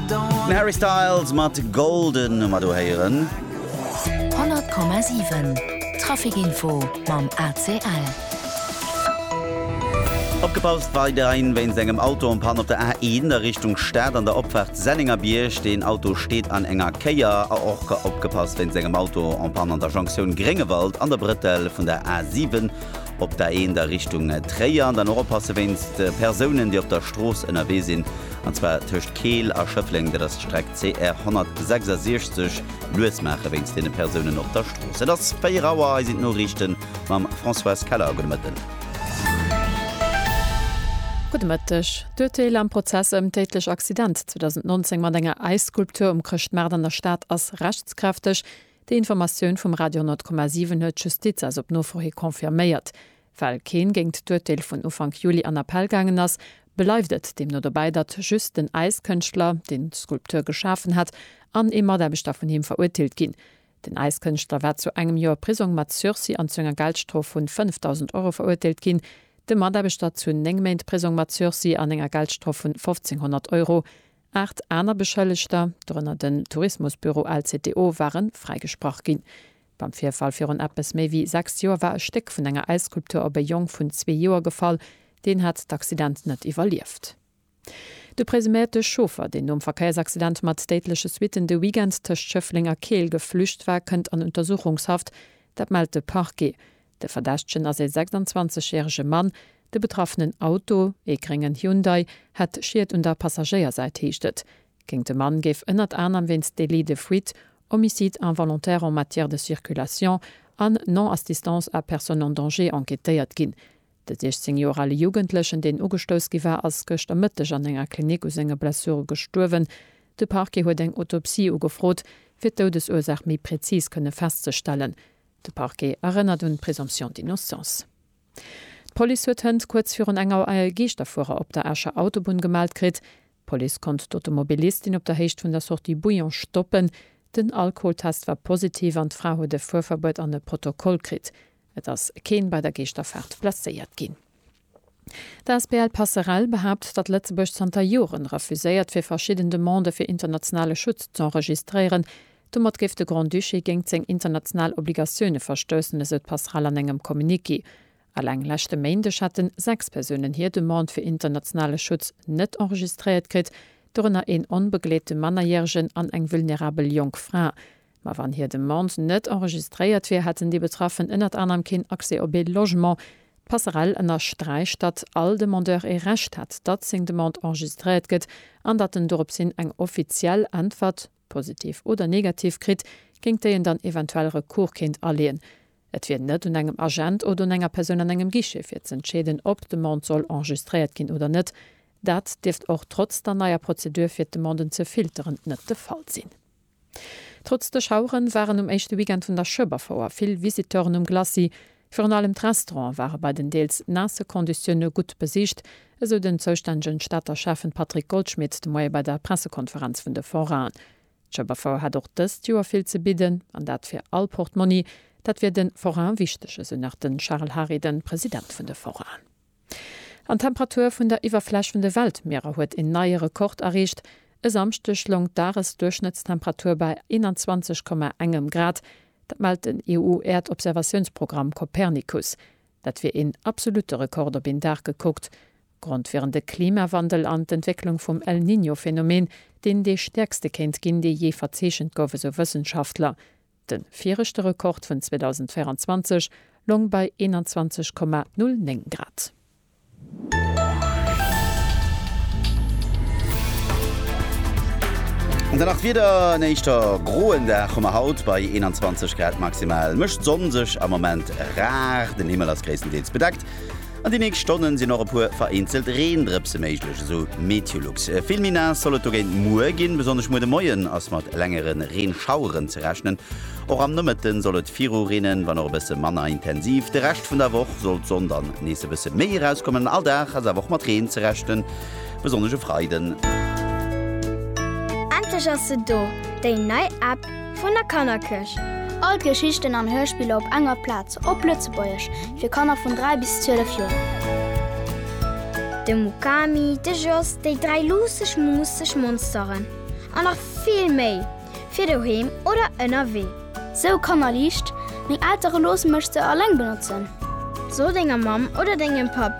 Den Harry Styles mat Golden hu mer do héieren. 100,7 Trafic Info mam ACL. Opgepasst, weiderhin wéinst engem Auto en Panne op der A1 a Richtung Stad an der Opfaart Sennengerbierg. Deen Auto steet an enger Kéier. A och opgepasst, wéinst engem Auto en Panne an der Jonktioun Gréngewald an der Brëtell vun der A7 Op der Eent a Richtung Tréier an dann och oppasse wéinst Persounen, déi op der Strooss ënnerwee sinn, an zwar tëscht Keel a Schëffleng, dat ass d'Streck CR 166. Lues maache wéinst deene Persounen op der Strooss. Et ass 4 Auer, hei sinn d'Noriichte mam Françoise Keller. Gudde Mëtten. Gudde Mëtteg. D'Urteel am Prozess ëm d'déidlech Accident 2019 mat enger Äisskulptur um Chrëschtmaart an der Stad ass rechtskräfteg. Déi Informatioun vum Radio 100,7 huet d'Justiz eis op Nofro hi confirméiert. Well keen géingt d'Urteel vun Ufank Juli an Appell gaangen ass, bleift et deemno dobäi, datt just den Äiskënschtler, deen d'Skulptur geschafen hat, an ee Mataarbechter vun him verurteelt ginn. Den Äiskënschtler war zu engem Joer Prisong mat Sursis an zu enger Geldstrof vun 5.000 Euro verurteelt ginn, de Mataarbechter zu néng Méint Prisong mat Sursis an enger Geldstrof vun 1.500 Euro. Aacht aner Beschëllegter, dorënner den Tourismusbüro LCTO, ware fräigesprach ginn. Beim Virfall virun eppes méi wéi sechs Joer war e Stéck vun enger Äisskulptur op e Jong vun zwee Joer gefall. Deen hat d'Accident net iwwerlieft. De presuméierte Chauffer, deen nom Verkéiersaccident mat déidleche Suitten de Weekend tëscht Schëffleng a Keel geflücht war, kënnt an Untersuchungshaft. Dat mellt de Parquet. De Verdächtegen ass ee 26 järege Mann. De betraffenen Auto, ee gréngen Hyundai, hätt Schied un der Passagéiersäit, heescht et. Géint de Mann géif ënnert anerem wéinst Délit de fuite, Homicide involontaire en matière de circulation an Non-assistance à personne en danger enquêtéiert ginn. De 16 Joer ale Jugendlechen, deen ugestouss gi war, ass gëschter Mëtteg an enger Klinik u senge Blessure gestuerwen. De Parquet huet eng Autopsie ugefrot, fir d'Doudesursaach méi präzis kënne festzestellen. De Parquet erënnert un d'Présomption d'innocence. D'Police huet hënt kuerz virun eng Auer e Geeschterfuerer op der Escher Autobunn gemellt kritt. D'Police konnt d'Automobilistin op der Héicht vun der Sortie Bouillon stoppen. Den Alkoholtest war positiv an d'Fra huet e Fuerverbuet an e Protokoll kritt. Et ass keen bei der Geeschterfaart blesséiert ginn. D'asbl Passerell behaapt, datt Lëtzebuerg zanter Joren refuséiert fir verschidden Demandë fir internationale Schutz z'enregistréieren. Domat géif de Grand-Duché géingt seng international Obligatioune verstoussen, esou d'Passerell an engem Communiqué. Eleng leschte Méindeg hätten 6 Persounen hir Demande fir internationale Schutz net enregistréiert kritt, dorënner een onbegleete Mannerjäregen an eng vulnerabel jonk Fra. Ma wann hir Demande net enregistréiert wier, hätten déi Betraffen ënnert anerem keen Accès op ee Logement. D'Passerell ënnersträicht, datt all Demandeur ee Recht hätt, datt seng Demande enregistréiert gëtt an datt en doropshin eng offiziell Äntwert, positiv oder negativ, kritt, géint déi en dann eventuell Recours kéint aleeën. Et wier net un engem Agent oder un enger Persoun an engem Guichet fir ze entscheeden, ob d'Demande soll enregistréiert ginn oder net. Dat dierft och trotz der neier Prozedur fir d'Demanden ze filteren net de Fall sinn. Trotz de Schaueren waren um éischte Weekend vun der Schueberfouer vill Visiteuren um Glacis. Virun allem d'Restaurante ware bei den deels naasse Konditioune gutt besicht, esou den zoustännegen Stater Schäffen Patrick Goldschmidt de Moie bei der Pressekonferenz vun de Forainen. D'Schueberfouer hätt och dëst Joer vill ze bidden, an dat fir all Portmonni. Dat wier de Forainen wichteg, esou nach de Charel Hary, de President vun de Forainen. An d'Temperatur vun der Iwwerfläch vun de Weltmierer huet een neie Rekord erreecht. E Samschdeg loung d'Dagesduerchschnëttstemperatur bei 21, engem Grad. Dat mellt den EU-Äerdobservatiounsprogramm Copernicus. Dat wier een absolutte Rekord op een Dag gekuckt. Grond wieren de Klimawandel an d'Entwécklung vum El Niño-Phenomen, deen dee stäerkste kéint ginn, dee jee verzeechent gouf, esou Wëssenschaftler. De viregte Rekord vun 2024 loung bei 21,09 Grad. An dann nach d'Wieder, En éischter groen Dag hu mer haut bei 21 Grad. Maximal mécht d'Sonn sech am Moment rar, den Himmel ass gréisstendeels bedeckt. An de nächst Stonne sinn och e puer vereenzelt Reendrëpse méiglech, esou Meteolux. Vill méi naass soll et dogéint muer ginn. Besonnesch muer de Moien ass mat längere Reenschaueren ze rechnen. Och am Nomëtte soll et viru reenen, wann och e bësse manner intensiv. De Rescht vun der Woch soll d'Sonn dann nees e bësse méi erauskommen. All Dag ass awer och mat Reen ze rechnen, besonnesch e Freiden. Endlech ass se do, déi nei App! Vun der Kannerkirch. All d'Geschichten an Hörspiller op enger Plaz, op Lëtzebuergesch, fir Kanner vun 3 bis 12 Joer. De Mukami, de Jos, déi dräi luusseg, muusseg Monsteren an nach vill méi, fir doheem oder ënnerwee. Sou kannerliicht, meng Eltere loosse mech se alleng benotzen. So denger Mamm oder dengem Papp,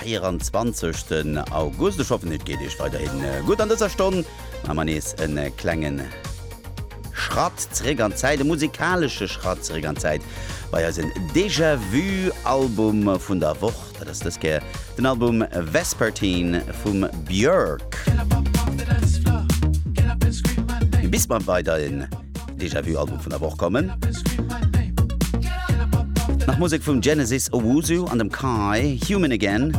24 August. Ech hoffen et geet Iech weiderhin gutt an dëser Stonn. Maache mer nees e klengen Schratt zeréck an d'Zäit, e musikalesche Schratt zeréck an d'Zäit bei eisen Déjà Vu Album vun der Woch. Dat ass dës Kéier den Album Vespertine vum Björk. Bis mer weiderhin. Déjà Vu Album vun der Woch kommen. Nach Musek vum Genesis Owusu an dem Kai, Human Again.